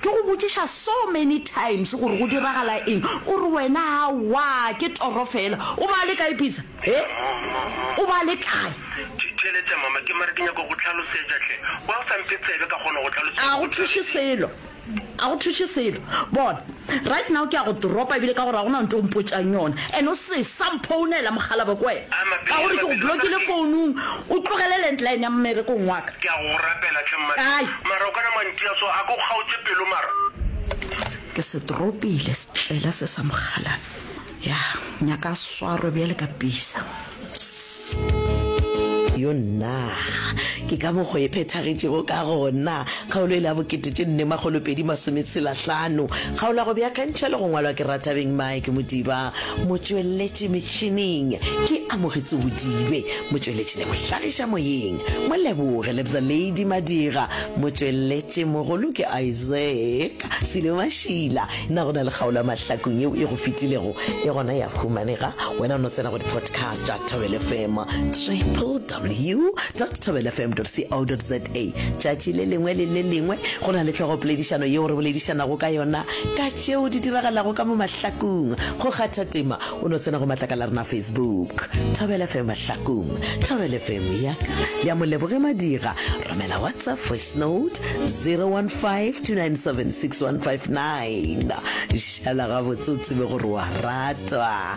Ke go botšiša so many times gore go diragala eng, o re wena awa ke toro fela. O ba le kae Pizza? He? O ba le kae? Tšheletša mama, ke mare ke nyaka go go hlalosetša hle. Why o sa mphe tsebe ka kgona go go hlalosetša? A go thuše selo, a go thuše selo. Bona, right now ke ya go dropa ebile ka gore ga go na nto o mpotšang yona. And o se sa mphounela mokgalabje ko wena ka gore ke go blockile founung, o tlogele landline ya mmerekong wa ka. Ke ya go go rapela hle mma. Kae? Mara o kana mantši a so a ko kgaotše pelo mara. Ke se tropile setlela se sa mogalana ya nyaka a swarwe bjale ka pisa. Yo nnaa ke ka mokgo e phethagetšego ka gona. Kgaolo e le ya bokete tše nne makgolo pedi masome tshela hlano. Kgaolo ya go beakantšha le go ngwalwa ke Rathabeng Mike Modiba. Motšweletši metšhining ke Amogetso Bodibe. Motšweletši le mohlagiša moyeng Moleboge Lebza Lady Madira Motšweletši mogolo ke Isaac Silo Mashila Na go na le kgaolo ya mahlakong yeo e go fetilego? E gona ya humanega Wena o no tsena go di-podcast tša Thobel FM www.thobelfm.co.za Tšatši le lengwe le le lengwe go na le hlogopoledišano yeo re boledišanago ka yona ka tšeo di diragalago ka mo mahlakong Go kgatha tema O no tsena go matlakala a rena a Facebook, Thobela FM Mahlakong, Thobela FM ya ka, le ya Moleboge Madira. Romela WhatsApp voice note 015-297-6159. Šala gabotse o tsebe gore wa ratwa.